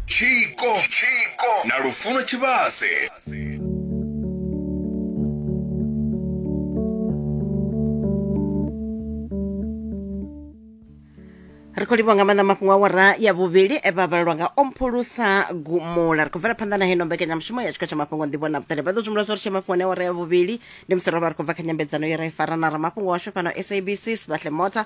tshiko na lufuno tshivhase ri khou livhwa nga maanḓa mafhungo a wara ya vhuvhili e vha vhalelwa nga omphulusa gumula ri khou bvela phanḓa na heno mbekanyamushumo ya tshiko tsha mafhungo nḓivho na vhuṱali vha ḓo zwimula zwo ri tshe mafhungo ne wara ya vhuvhili ndi musi ro vha ri khou bva kha nyambedzano ye ra i fara na ramafhungo washu fhano sabc sbahle mota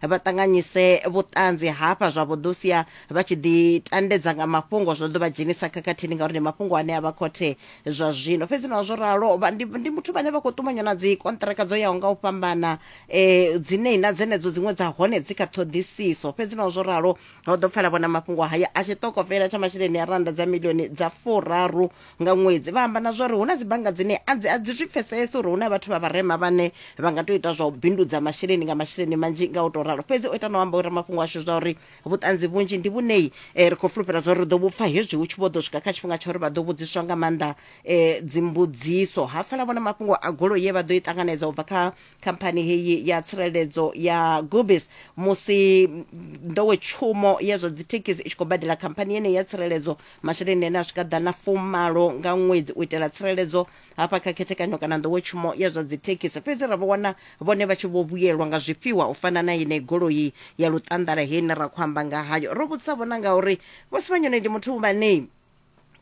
vha ṱanganyise vhuṱanzi hafha zwa vho ḓo sia vha tshi ḓi tandedza nga mafhungo zwa ḓo vha dzhenisa khakhathini ngauri ndi mafhungo ane a vha khothe zwa zwino fhedzi na zwo ralo ndi, ndi muthu vhane vha khou ṱumanywa na dzi kontraka dzo yaho nga u fhambana um dzine na dzenedzo dziṅwe dza hone dzi kha ṱhoḓisiso fhedzi na zwo ralo ho ḓo pfala vhona mafhungo haya a tshiṱokofela tsha masheleni a randa dza milioni dza furaru nga ṅwedzi vha amba na zwa uri hu na dzibannga dzine a dzi a dzi zwi pfesese uri hu na vhathu vha vharema vhane vha nga tou ita zwa u bindudza masheleni nga masheleni manzhi nga u tou ralo fhedzi o ita na u amba uri mafhungo ashu zwa uri vhuṱanzi vhunzhi ndi vhunei eh, ri khou fulufhela zwa uri ri ḓo vhupfa hezwi hu tshi vho ḓo swika kha tshifhinga tsha uri vha ḓo vhudziswa nga maanḓa eh, dzimbudziso ha pfala vhona mafhungo a golo ye vha ḓo i ṱanganedza u bva kha khamphani heyi ya tsireledzo ya gubis musi nḓowetshumo ya zwa dzithekhisi i tshi khou badela khamphani yeneyi ya tsireledzo masheleni ane a swika ḓana fumalo nga ṅwedzi u itela tsireledzo hafha kha khethekanyo kana nḓowetshumo ya zwa dzithekhisi fhedzi ra vho wana vhone vha tshi vho vhuyelwa nga zwifhiwa u fana na yeneyi goloi ya luṱanḓala heine ra khou amba nga hayo ro vhudzisa vhona ngauri vho sivhanyone ndi muthu vhanei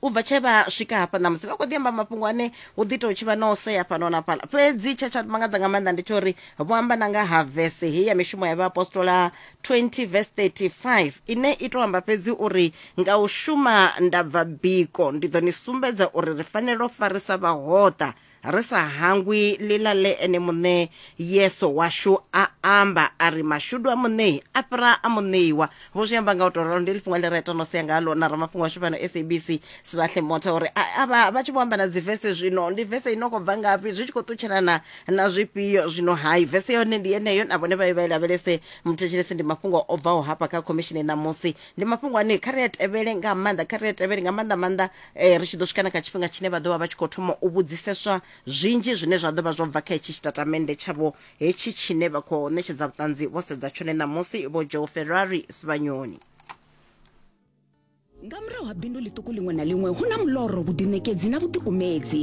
u bva tshe vha swika hafha ṋamusi vha khou ḓi amba mafhungo ane hu ḓi tou tshi vha na u sea fhano na fhala fhedzi tshe tsha mangadza nga maanḓa ndi tsha uri vho amba na nga ha vese heyi ya mishumo ya vhaapostola 20 vese 35 ine i tou amba fhedzi uri nga u shuma ndabva biko ndi ḓo ni sumbedza uri ri fanela u farisa vhahoṱa ri sa hangwi ḽiḽa ḽe ene muṋe Yesu washu a amba a ri mashudu a muṋei a fhira a muṋeiwa vho zwi amba nga u tou ralo ndi ḽifhungo ḽi re ita no sea nga ḽo na ramafhungo washu fhano sabc sibahle mota uri avha vha tshi vho amba na dzi vese zwino ndi vese i no khou bva ngafhi zwi tshi khou ṱutshelana na zwifhio zwino hai vese yone ndi yeneyo na vhone vha ye vha i lavhelese muthetshelesi ndi mafhungo o bvaho hafha kha khomishini ṋamusi ndi mafhungo ane kha ri a tevhele nga maanḓa kha ri a tevhele nga maanḓa maanḓa eh, ri tshi ḓo swika na kha tshifhinga tshine vha ḓo vha vha tshi khou thoma u vhudziseswa zwinzhi zwine zwa ḓo vha zwo bva kha hetshi tshitatamennde tshavho hetshi tshine vha khou ṋetshedza vhuṱanzi vho sedza tshone ṋamusi vho joe ferrari sivhanyoni nga murahu ha bindu ḽiṱuku ḽiṅwe na ḽiṅwe hu na muloro vhuḓiṋekedzi na vhuḓikumedzi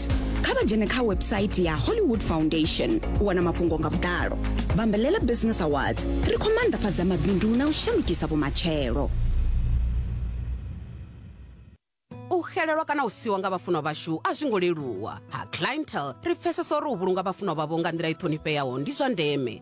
Awards kha vha dzhene kha website ya hollywood foundation u wana mafhungo nga vhuḓalo vhambelela business awards ri khou maanḓafhadza mabindu na u shandukisa vhumatshelo u xelelwa kana u siwa nga vhafunwa vhashu a zwi ngo leluwa ha clientele ri pfesesa uri u vhulunga vhafunwa vhavho nga nḓila i ṱhonifheaho ndi zwa ndeme